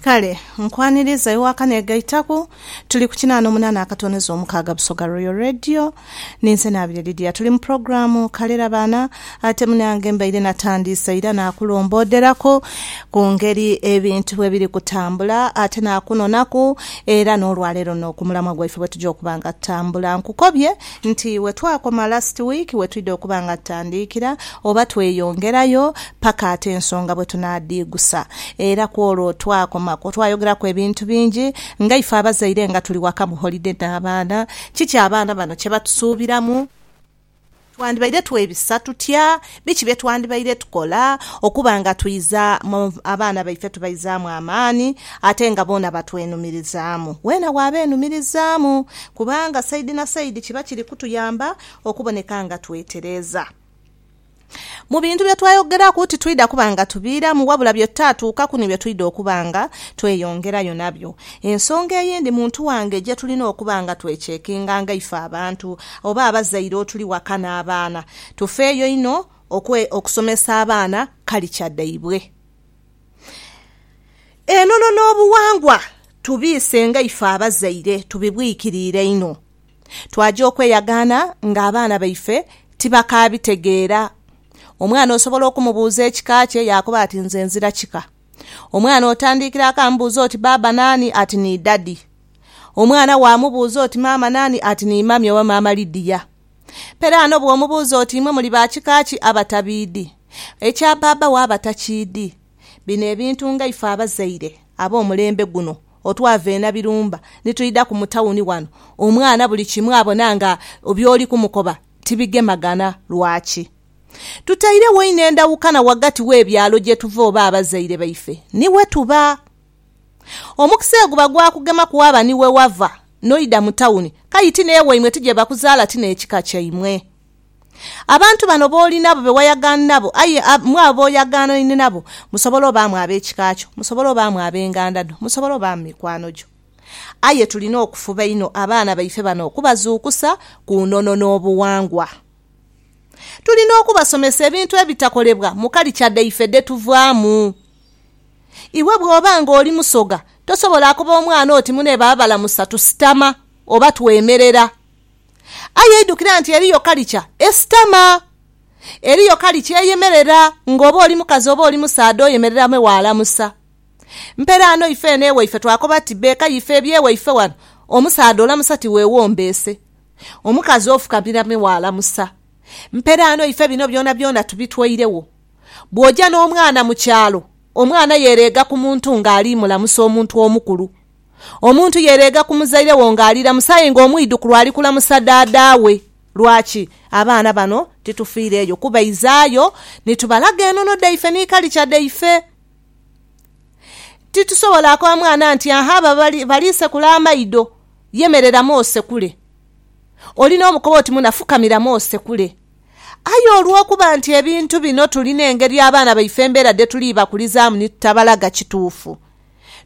Kale nkwaniriza iwe akanegaitaku. Tuli ku kinaana omunaana akatoneza omukaaga Busoga Royal Radio. Ninze Naabire Lydia. Tuli mu pulogulaamu Kalera Baana ate munange mbaire natandiise ira naakulombooderaku ku ngeri ebintu bwe biri kutambula ate naakunonaku era n'olwaleero no ku mulamwa gwaife bwe tuja okuba nga tutambula. Nkukobye nti wetwakoma last week wetwidha okuba nga tutandiikira oba tweyongerayo paka ate ensonga bwetunaadhiigusa era kwolwo twakomaku twayogeraku ebintu bingi nga ife abazaire nga tuli waka mu holiday n'abaana kiki abaana bano kyebatusuubiramu, twandibaire twebisa tutya Biki bye twandibaire tukola okuba nga twidha mu abaana baife tubaizaamu amaani ate nga boona batwenumirizaamu? Weena waabeenumirizaamu, kubanga saidi na saidi kiba kiri kutuyamba okuboneka nga twetereeza. Mu bintu bye twayogeraku titwidha kuba nga tubiiramu wabula bye tutaatuukaku ni bye twidha okuba nga tweyongerayo nabyo. Ensonga eyindi muntu wange gye tulina okuba nga twecekinganga ife abantu oba abazaire otuli waka n'abaana, Tufeeyo inho okusomesa abaana kalicha dhaibwe. Enono n'obughangwa tubiise nga ife abazaire tubibwikiriire inho. Twaja okweyagaana ng'abaana baife tibakaabitegeera. Omwana osobola okumubuuza ekika kye yaakoba ati nze nzira kika. Omwana otandiikira akamubuuza oti baaba naani ati ni dadi. Omwana waamubuuza oti maama naani ati ni mami oba maama Lydia. Pere ano bw'omubuuza oti imwe muli ba kika ki abatabiidhi, ekya bbaabba wo aba takiidhi? Bino ebintu nga ife abazaire ab'omulembe guno otwava e Nabirumba ni twidhaku mu tawuni wano, omwana buli kimu abona nga by'oli kumukoba tibigemagana. Lwaki? Tutairegho inho endawukana ghagati w'ebyalo gye tuva oba abazaire baife ni we tuba. Omukisa egwo bagwakugema ku waba ni we wava n'oidha mu tawuni, kayi ti n'ewaimwe ti gye bakuzaala ti n'ekika kyaimwe. Abantu bano b'oli nabo be wayagaani nabo, aye mwabo b'oyagaanhaine nabo, musobola obaamu ab'ekika kyo, musobola obaamu ab'enganda dho, musobola obaamu mikwano gyo. Aye tulina okufuba inho abaana baife bano okubazuukusa ku nono n'obughangwa. Tulina okubasomesa ebintu ebitakolebwa mu kalicha dhaife dhe tuvaamu. Iwe bw'oba ng'oli musoga, tosobola akoba omwana oti, Mune baabalamusa, tusitama, oba twemerera. Aye idhukira nti eriyo kalicha esitama. Eriyo kalicha eyemerera, ng'oba oli mukazi oba oli musaadha oyemerera me waalamusa. Mperaano ife eno ewaife twakoba tuti, Bbeeka ife eby'ewaife wano, omusaadha olamusa ti weewombeese. Omukazi ofukamira me waalamusa. Mperaano ife bino byonabyona tubitweiregho. Bw'oja n'omwana mu kyalo, omwana yereega ku muntu ng'ali mulamusa omuntu omukulu. Omuntu yereega ku muzaire wo ng'ali lamusa aye ng'omwidhukulu ali kulamusa dhaadha we. Lwaki? Abaana bano titufiireeyo kubaizaayo ni tubalaga enono dhaife ni kalicha dhaife. Titusobola akoba mwana nti, Aha abo bali sekula amaidho, yemereramu osekule. Oli n'omukoba oti muna fukamiramu osekule. Aye olw'okuba nti ebintu bino tuli n'engeri abaana baife embeera dhe tuli bakulizaamu ni tutabalaga kituufu,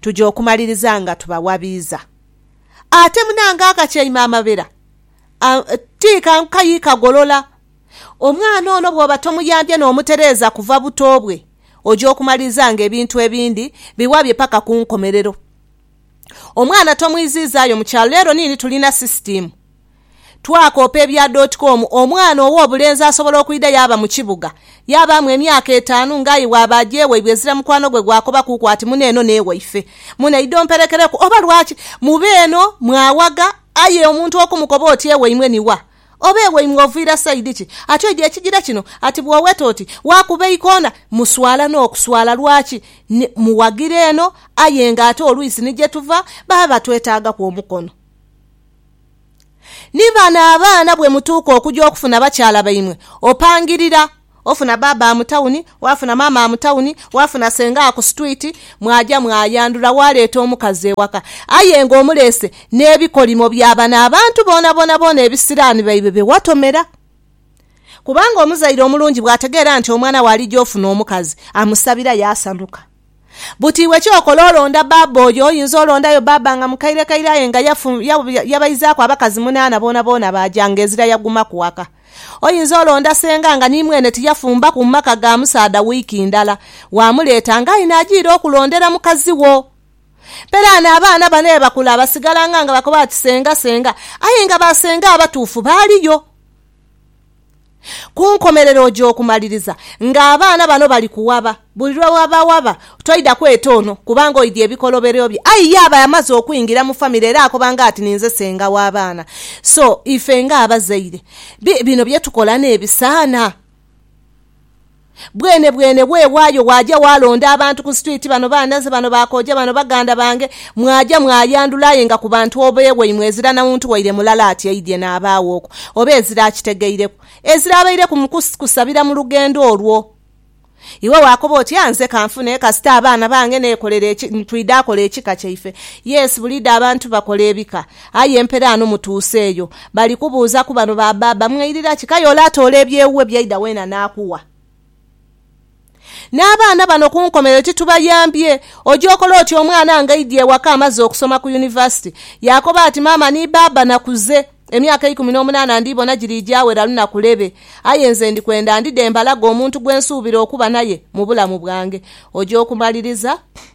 tuja okumaliriza nga tubawabiiza. Ate munange akatyaime amabera a ti kankayi kagolola. Omwana ono bw'oba tomuyambye n'omutereeza kuva buto bwe, oja okumaliriza nga ebintu ebindi biwabye paka ku nkomerero. Omwana tomwiziizaayo mu kyalo leero niini tulina sisitiimu. Twakoopa ebya dotcom, Omwana ow'obulenzi asobola okwidha yaaba mu kibuga, yaabaamu emyaka etaanu ng'aye bw'aba agya ewaibwe ezira mukwano gwe gwakobakuuku ati muno eno n'ewaife, muno idha omperekereku oba lwaki muba eno mwawagha aye omuntu okumukoba oti ewaimwe ni wa? Oba ewaimwe oviira sayidi ki? Ati oidhi ekigira kino ati bw'oweta oti waakuba eikona muswala n'okuswala lwaki ni muwagira eno aye ng'ate olwisi ni gye tuva baba batwetaagaku omukono. Ni bano abaana bwe mutuuka okuja okufuna bakyala baimwe, opangirira, ofuna baabaa mu tawuni, waafuna maamaa mu tawuni, waafuna sengaa ku situwiti, mwaja mwayandhula waaleeta omukazi ewaka. Aye nga omuleese n'ebikolimo bya bano abantu boonaboona ebisiraani baibwe bye watomera. Kubanga omuzaire omulungi bw'ategeera nti omwana we alija ofuna omukazi, amusabira yaasanuka. Buti iwe ky'okola olonda bbaabba oyo, oyinza olondayo bbaabba nga mukairekaire aye nga yafu, ya, ya, yabaizaaku abakazi munaana boonaboona baaja nga ezira yagumaku waka. Oyinza olonda senga nga ni mwene tiyafumbaku mu maka ga musaadha wiiki ndala, waamuleeta nga aye naajiira okulondera mukazi wo. Peraano abaana bano ye bakula basigalanga nga bakoba bati senga, senga, aye nga ba senga abatuufu baaliyo. Ku nkomerero oja okumaliriza ng'abaana bano bali kuwaba. Buli lwe babawaba, toidha kweta ono kubanga oidhie bikolobero bye. Aye ye aba amaze okwingira mu famire era akobanga ati ninze senga w'abaana. So, ife ng'abazaire, bino bye tukola n'ebisaana? Bwenebwene bwewaayo waaja waalonda abantu ku street, bano baanaze, bano baakooja, bano baganda bange, mwaja mwayandula aye nga ku bantu obe waimwe ezira na muntu waire mulala ati aidhye n'abaagho okwo oba ezira akitegeireku, ezira abaire ku kusabira mu lugendo olwo. Iwe waakoba oti, Ah, nze kanfune kasita abaana bange neekolera eki, twidha kola ekika kyaife. Yes, buliidho abantu bakola ebika. Aye mperaano mutuuse eyo, bali kubuuzaku bano ba baaba, Mwairira ki? K'aye ole atoola ebyewuwe by'aidha weena n'akugha. N'abaana bano ku nkomerero titubayambye. Oja okola otya omwana ng'aidye ewaka amaze okusoma ku yunivasite, yaakoba ati, Maama ni baaba nakuze, emyaka eikumi n'omunaana ndiibona giri gyawera lunaku lebe, aye nze ndi kwenda ndidhe mbalage omuntu gwe nsuubira okuba naye mu bulamu bwange. Oja okumaliriza?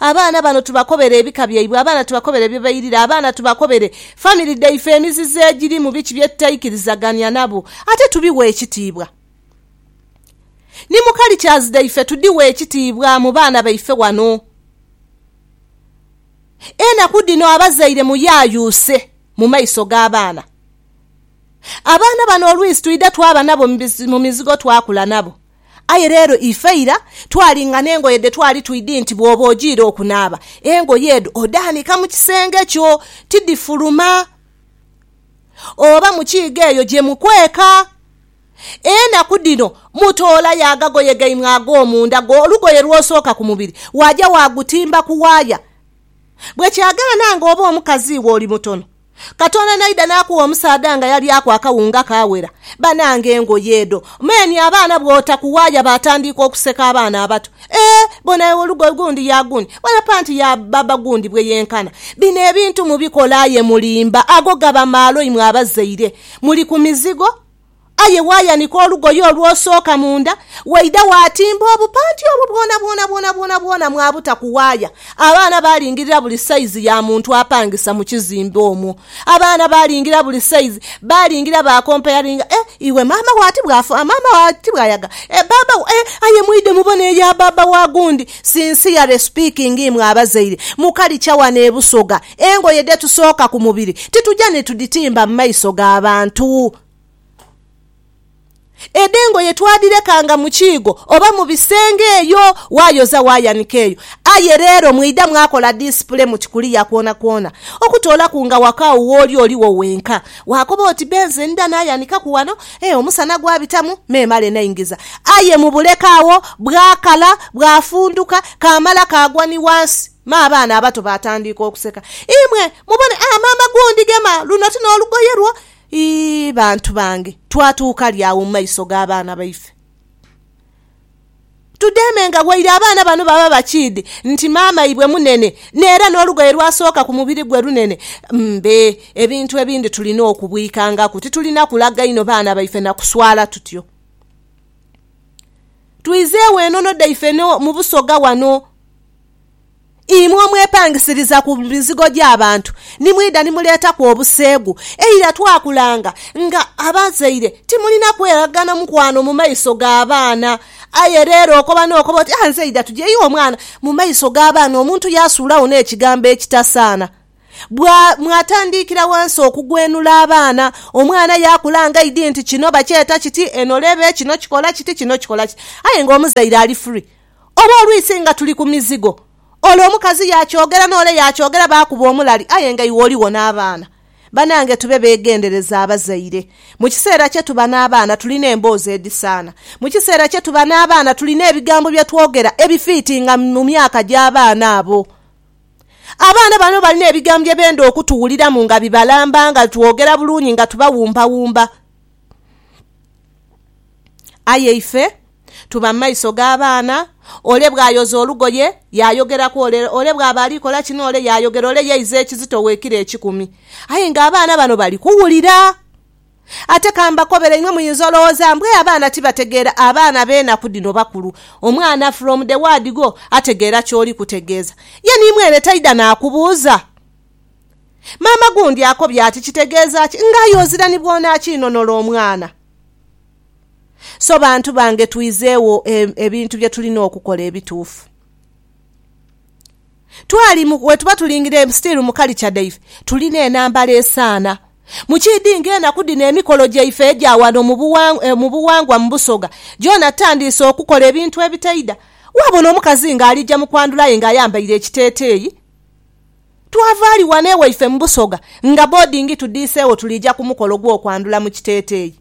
Abaana bano tubakobere ebika byaibwe, abaana tubakobere bye bairire, abaana tubakobere family dhaife emizizo egirimu, biki bye tutaikirizagania nabo ate tubighe ekitiibwa. Ni mu cultures dhaife tudhighe ekitiibwa mu baana baife wano. Enaku dhino abazaire muyayuuse mu maiso g'abaana. Abaana bano olwisi twidha twaba nabo mu mizigo twakula nabo. Aye leero ife ira twalinga n'engoye dhe twali twidhi nti bw'oba ojiire okunaaba, engoye edho odhaanika mu kisenge kyo, tidhifuluma. Oba mu kiiga eyo gye mukweka. Enaku dhino mutoolayo agagoye gaimwe ag'omunda, olugoye lw'osooka ku mubiri, waaja waagutimba ku waaya. Bwe kyagaana ng'oba omukazi iwe oli mutono, Katonda naidha n'akugha omusaadha nga yalyaaku akawunga kaawera. Banange engoye edho! Meni abaana bw'otaku waaya baatandiika okuseka abaana abato. Eeh! Bona ewe olugoye gundi ya gundi, bona panti ya bbaabba gundi bwe yenkana. Bino ebintu mubikola aye mulimba, ago gaba maalo imwe abazaire. Muli ku mizigo. Aye waayanika olugoye olw'osooka munda, waidha waatimba obupanti obwo bwonabwona bwonabwonabwona mwabuta ku waaya. Abaana baalingirira buli saizi ya muntu apangisa mu kizimbe omwo. Abaana baalingira buli saizi, baalingira baakompayaringa, Eh, iwe maama wo ati bw'afa, maama wo ati bw'ayaga, eh, baaba wo, eh, aye mwidhe mubone eya baaba wa gundi. Sincerely speaking imwe abazaire, mu kalicha wano e Busoga, engoye dhetusooka ku mubiri tituja ni tudhitimba mu maiso ga bantu. Edh'engoye twadhirekanga mu kiigo oba mu bisenge eyo, waayoza waayanika eyo. Aye leero mwaidha mwakola disipule muti kuliya kwonakwona. Okutoolaku nga waka agho w'oli oligho wenka, waakoba oti be nze ndha naayanikaku wano, ee omusana gwabitamu me male naingiza. Aye mu buleka agho bwakala, bwafunduka, kaamala kaagwa ni wansi. Me abaana abato baatandiika okuseka. Imwe mubone, aa maama gundi gema, luno ti n'olugoye lwo? Ii, bantu bange, twatuuka li agho mu maiso g'abaana baife? Tudheemenga waire abaana bano baba bakiidhi nti maamaibwe munene n'era n'olugoye lw'asooka ku mubiri gwe lunene. Mbe, ebintu ebindi tulina okubwikangaku. Titulina kulaga inho baana baife na kuswala tutyo. Twizeegho enono dhaife mu Busoga wano Imwe omwepangisiriza ku mizigo gy'abantu ni mwidha ni muleetaku obuseegu. Eira twakulanga nga abazaire timulina kweraghana mukwano mu maiso g'abaana. Aye leero okoba n'okoba oti, Ah, nze idha tugye iwe mwana. Mu maiso g'abaana omuntu yaasuulagho n'ekigambo ekitasaana. Bwa, mwatandiikira ghansi okugwenula abaana. Omwana yaakula nga aidhi nti kino bakyeta kiti, eno lebe, kino kikola kiti, kino kikola kiti. Aye ng'omuzaire ali free. Oba olwisi nga tuli ku mizigo, ole omukazi yaakyogera n'ole yaakyogera baakuba omulali aye nga iwe oligho n'abaana. Banange tube beegendereza abazaire. Mu kiseera kye tuba n'abaana tulina emboozi edhisaana. Mu kiseera kye tuba n'abaana tulina ebigambo bye twogera ebifiitinga mu myaka gy'abaana abo. Abaana bano balina ebigambo bye benda okutuwuliramu nga bibalamba nga twogera bulungi nga tubawumbawumba. Aye ife tuba mu maiso g'abaana, ole bw'ayoza olugoye, yaayogeraku ole, ole bw'aba ali kola kino ole yaayogera ole yeiza ekizito owe ekiro ekikumi. Aye ng'abaana bano bali kuwulira! Ate ka mbakobere, inwe muyinza olowooza mbu, 'Ee, abaana tibategeera. Abaana b'enaku dhino bakulu. Omwana from the word go ategeera ky'oli kutegeeza. Ye ni mwene taidha naakubuuza. Maama gundi akobye ati, Kitegeeza ki nga aye ozira ni bw'onaakiinonola omwana? So bantu bange twizeegho ebintu bye tulina okukola ebituufu. Twali mu, bwe tuba tulingira still mu kalicha dhaife, tulina enhambala esaana. Mu kiidhi nga enaku dhino emikolo gyaife egya wano mu bughangwa, mu Busoga, gyona tutandiise okukola ebintu ebitaidha. Waabona omukazi nga alija mu kwandhula aye nga ayambaire ekiteeteeyi. Twavaali ghano ewaife mu Busoga nga boodingi tudhiiseegho tuliija ku mukolo gw'okwandhula mu kiteeteeyi.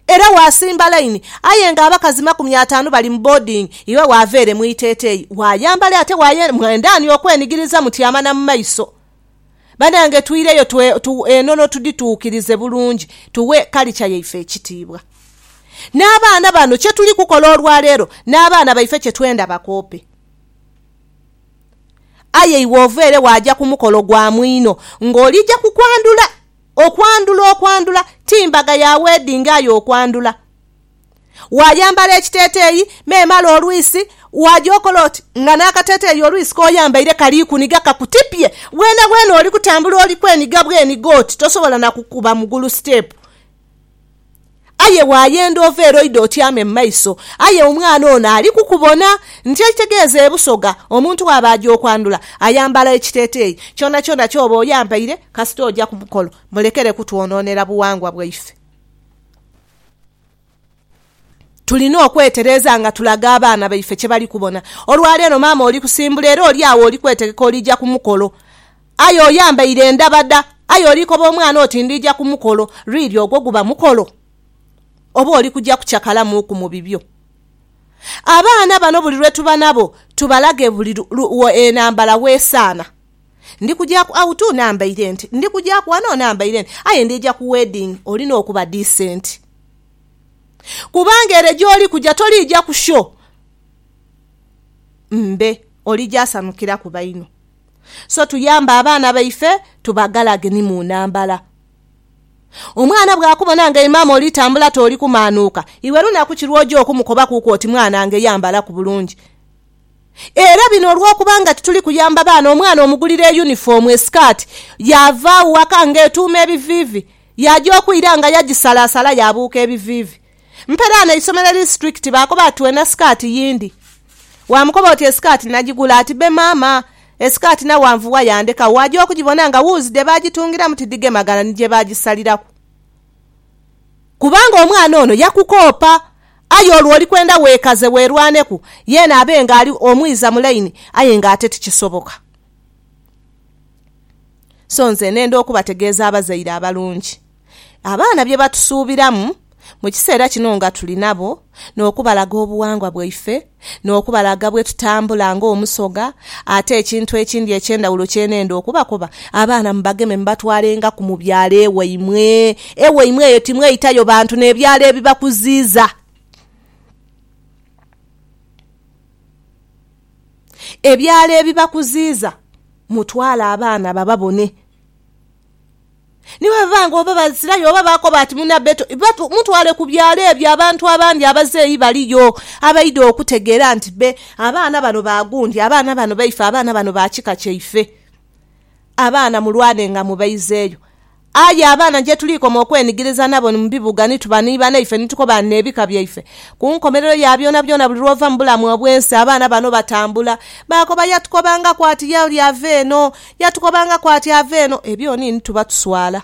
Era waasimba laini aye ng'abakazi makumi ataanu bali mu boodingi, iwe waava ere mu iteeteeyi waayambale ate waye mwendaani okwenigiriza mu tyama na mu maiso. Banange twiireyo tu enono tudhituukirize bulungi tughe kalica yaife ekitiibwa. N'abaana bano kye tuli kukola olwaleero n'abaana baife kye twenda bakoope. Aye iwe ova ere waaja ku mukolo gwa mwino ng'olija ku kwandhula. Okwandhula, okwandhula! Ti mbaga ya weddingi aye okwandhula. Waayambala ekiteeteeyi, memale olwisi, waaja okola oti nga n'akateeteeyi olwisi k'oyambaire kali kuniga kakutipye. Bwenabwena oli kutambula oli kweniga bweniga oti tosobola na kukuba mugulu siteepu. Aye waayenda ova ere oidha otyame mu maiso, aye omwana ono ali kukubona. Nti ekitegeeza e Busoga omuntu bw'aba aja okwandhula ayambala ekiteeteeyi. Kyonakyona ky'oba oyambaire kasita oja ku mukolo mulekere kutwonoonera bughangwa bwaife. tulina okwetereeza nga tulaga abaana baife kye bali kubona. Olwaleero maama oli kusimbula era oli agho oli kwetegeka oliija ku mukolo. Aye oyambaire endhabadha, aye oli koba omwana oti ndiija ku mukolo. Really ogwo guba mukolo? Oba oli kuja kucakalamuuku mu bibyo? Abaana bano buli lwe tuba nabo tubalage buli enhambala w'esaana. Ndi kuja ku out nambaire nti, ndi kuja ku wano nambaire nti. Aye ndiija ku wedding olina okuba decent. Kubanga ere gy'oli kuja toliija kusyo mbe, olija asanukiraku baino. So tuyambe abaana baife tubagalage ni mu nambala. Omwana bw'akubona nga imaama oli tambula t'oli kumaanuuka, iwe lunaku ki lw'oja okumukobakuuku oti mwanange yambalaku bulungi? Era bino olw'okuba nga tituli kuyamba baana, omwana omugulira eyunifoomu, esikaati, yaava agho waka ng'etuuma ebiviivi. Yaaja okwira nga yagisalaasala yaabuuka ebiviivi. Mperaano eisomero eri siturikiti baakoba ati weena sikaati yindi. Waamukoba oti esikaati nagigula? Ati bbe maama, esikaati nawe anvuwa yandekagho. Waaja okugibona nga wuuzi dhe baagitungiramu tidhigemagana ni gye baagisaliraku. Kubanga omwana ono yakukoopa. Aye olwo oli kwenda weekaze weerwaneku yeena abe ng'ali omwiza mu laini aye ng'ate tikisoboka. So nze nenda okubategeeza abazaire abalungi abaana bye batusuubiramu mu kiseera kino nga tuli nabo, n'okubalaga obuwangwa bwaife, n'okubalaga bwe tutambula ng'Omusoga. Ate ekintu ekindi eky'endhawulo kye nenda okubakoba, abaana mubageme mubatwalengaku mu byalo ewaimwe. Ewaimwe eyo timweitayo bantu n'ebyalo ebibakuziiza. ebyalo ebibakuziiza mutwale abaana bababone. Ni bwe biba nga oba Baisiraeli oba baakoba ati munabe to, mutwale ku byalo ebyo abantu abandi abazeeyi baliyo abaidha okutegeera nti be abaana bano ba gundi, abaana bano baife, abaana bano ba kika kyaife. Abaana mulwanenga mubaizeeyo. Aye abaana gye tuliikoma okwenigiriza nabo ni mu bibuga, ni tuba ni banaife, ni tukoba n'ebika byaife. Ku nkomerero ya byonabyona, buli lw'ova mu bulamu obw'ensi, abaana bano batambula. Baakoba, Yatukobangaku ati, Ye oli ava eno. Yatukobangaku ati, Ava eno. Ebyoni ni tuba tuswala.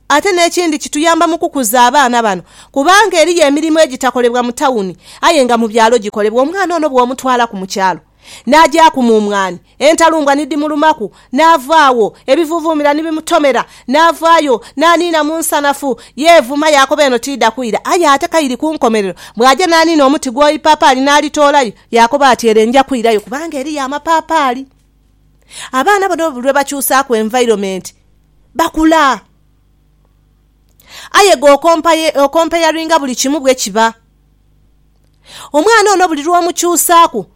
Ate n'ekindi, kituyamba mu kukuza abaana bano, kubanga eriyo emirimu egitakolebwa mu tawuni, aye nga mu byalo gikolebwa. Omwana ono bw'omutwalaku mu kyalo. N'agyaku mumwani, entalumbwa ni dhimulumaku, n'ava agho, ebivuuvuumira ni bimutomera. N'avaayo, n'aniina mu nsanafu, yeevuma, yaakoba, Eno tiidha kwira, aye ate ka iri ku nkomerero. Bw'aja n'aniina omuti gw'eipaapaali n'alitoolayo, yaakoba ati, Ere nja kwirayo, kubanga eriyo amapaapaali. Abaana bona buli lwe bakyusaaku environment, bakula. Aye gwe okompayaringa buli kimu bwe kiba. Omwana ono buli lw'omukyusaaku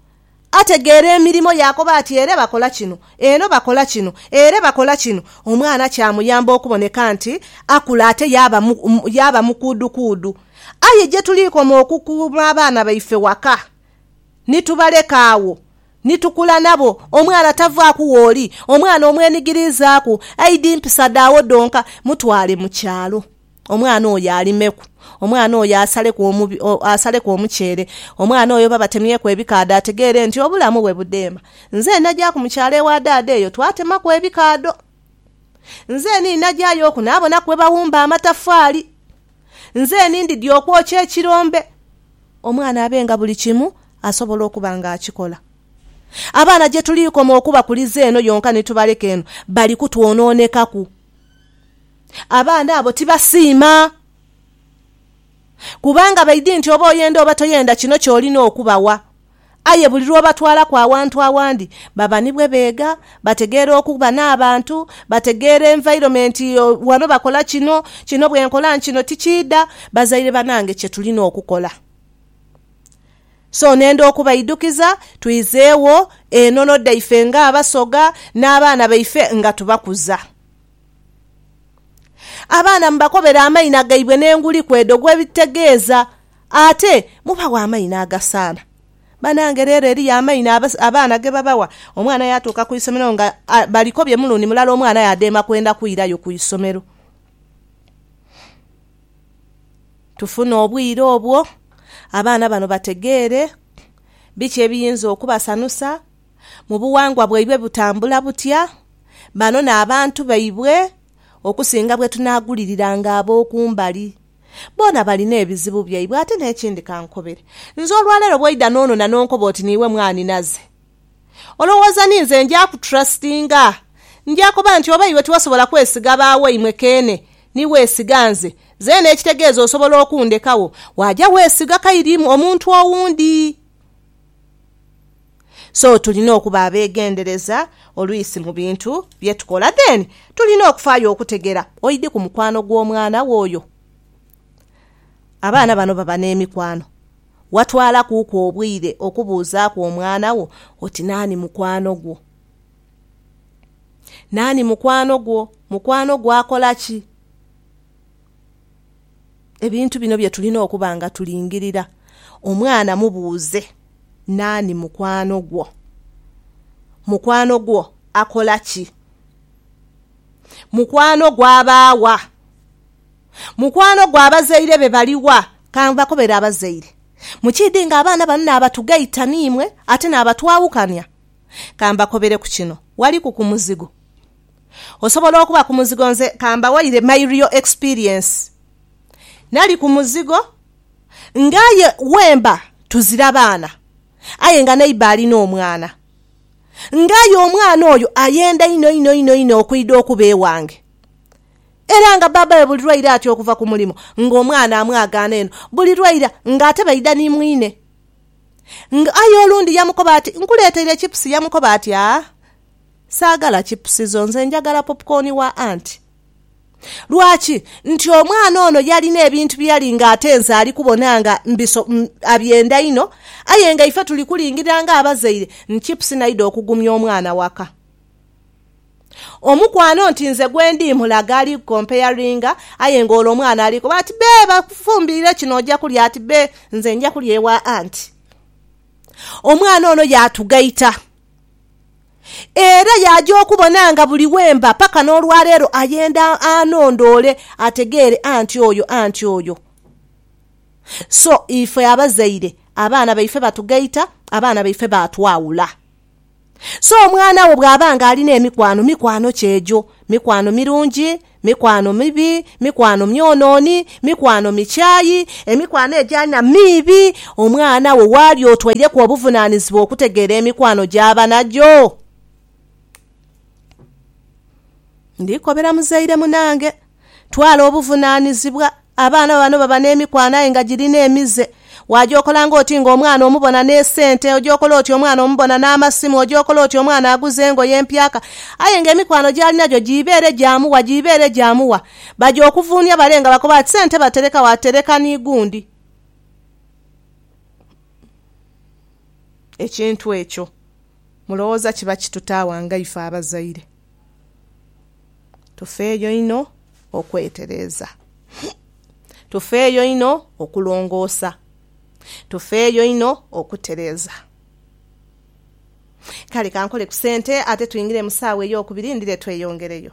ategeera emirimo yaakoba ati ere bakola kino, eno bakola kino, ere bakola kino. Omwana kyamuyamba okuboneka nti akula ate yaaba mukuudukuudu. Aye gye tuliikoma okukuuma abaana baife waka ni tubaleka agho ni tukula nabo, omwana tavaaku wooli. Omwana omwenigiriizaaku aidhi mpisa dhaagho dhonka, mutwale mu kyalo. omwana oyo alimeku, omwana oyo asaleku omuceere, omwana oyo babatemyeku ebikaadho ategeere nti obulamu bwe budheema. Nze nnajaaku mu kyalo ewa daada eyo twatemaku ebikaadho. Nze ni nnagyayo oku naabonaku bwe bawumba amatafaali. Nze ni ndidhi okwokya ekirombe. Omwana abe nga buli kimu asobola okuba ng'akikola. Abaana gye tuli koma okubakuliza eno yonka ni tubaleka eno, bali kutwonoonekaku. abaana abo tibasiima. Kubanga baidhi nti oba oyenda oba toyenda kino ky'olina okubawa. Aye buli lw'obatwalaku awantu awandi, baba ni bwe beega, bategeera okuba n'abantu, bategeera environment, ghano bakola kino, kino bwe nkola kino tikiidha. Bazaire banange kye tulina okukola. So nenda okubaidukiza twizeegho enono dhaife ng'Abasoga n'abaana baife nga tubakuza. Abaana mubakobere amaina gaibwe n'enguli kw'edho gwebitegeeza. Ate mubawe amaina agasaana. Banange leero eriyo amaina abaana gebabawa omwana yatuuka ku isomero nga balikobye mulundi mulala omwana aye adheema kwenda kwirayo ku isomero. Tufune obwire obwo abaana bano bategeere biki ebiyinza okubasanusa. mu bughangwa bwaibwe butambula butya, bano n'abantu baibwe okusinga bwe tunaaguliriranga ab'oku mbali. Boona balina ebizibu byaibwe. Ate n'ekindi ka nkukobere. Nze olwa leero bw'oidha n'onona n'onkoba oti niiwe mwanhinaze, olowooza ni nze nja kutrustinga? Nja koba nti oba iwe tiwasobola kwesiga ba waimwe keene ni weesiga nze, zeena ekitegeeza osobola okundhekagho, waaja weesiga kairimu omuntu owundi? So tulina okuba abegendereza oluisi mu bintu bye tukola. Then tulina okufaayo okutegera oidi ku mukwano gw'omwana wo oyo. Abaana bano baba n'emikwano. Watwalakuuku obwire okubuuzaaku omwana wo oti naani mukwano gwo? Naani mukwano gwo? Mukwano gwo akola ki? Ebintu bino bye tulina okuba nga tulingirira. Omwana mubuuze, Naani mukwano gwo? Mukwano gwo akola ki? Mukwano gwo aba wa? Mukwano gwo abazaire be bali wa? Ka mbakobere abazaire. Mukiidhi nga abaana bano naabatugaita n'imwe ate naabatwawukania? Ka mbakobereku kino, waliku ku muzigo Osobola okuba ku muzigo nze kambawaire my real experience nali ku muzigo nga aye wemba tuzira baana aye nga neighbour alina omwana nga aye omwana oyo ayenda inho inho inho inho okwidha okuba ewange era nga baba we buli lwaira atya okuva ku mulimo nga omwana amwagaana eno buli lwaira nga ate baidha ni mwine nga aye olundi yamukoba ati nkuleteire chips yamukoba ati aah. Saagala chipusizo, nze njagala popcorn wa aunt. Lwaki? Nti omwana ono yalina ebintu bye yali nga ate nze ali kubona nga mbiso, abyenda inho. Aye nga ife tuli kulingirira nga abazaire ni chipusi naidha okugumya omwana waka. Omukwano nti nze gwe ndi mmulaga ali ku comparinga aye nga ole omwana ali koba ati bee bakufumbirire kino oja kulya ati bee nze nja kulya ewa aunt. Omwana ono yaatugaita. Era yaaja okubona nga buli we mba paka n'olwaleero ayenda anondoole ategeere anti oyo anti oyo. So ife abazaire abaana baife batugaita, abaana baife baatwawula. So omwana wo bw'aba ng'alina emikwano, mikwano ki egyo? Mikwano mirungi? Mikwano mibi, mikwano myonooni, mikwano mikyayi, emikwano egyalina miibi, omwana wo waali otwaireku obuvunaanizibwa okutegeera emikwano gy'aba nagyo. Ndikobera muzaire munange, twala obuvunaanizibwa Abaana bano baba n'emikwano aye nga girina emize. Waagyokola ng'oti ng'omwana omubona n'esente, ogyokola oti omwana omubona n'amasimu, ogyokola oti omwana aguze engoye empyaka. Aye ng'emikwano gy'alina gyo giibeere gya muwa, giibeere gya muwa. Baja okuvuunia bale nga bakoba bati, Sente batereka wa? Tereka ni gundi. Ekintu ekyo mulowooza kiba kitutaawa ngaife abazaire? Tufeeyo inho okwetereeza. Tufeeyo inho okulongoosa. Tufeeyo inho okutereeza. Kale kankole ku sente ate twingire mu saawa ey'okubiri ndhire tweyongereyo.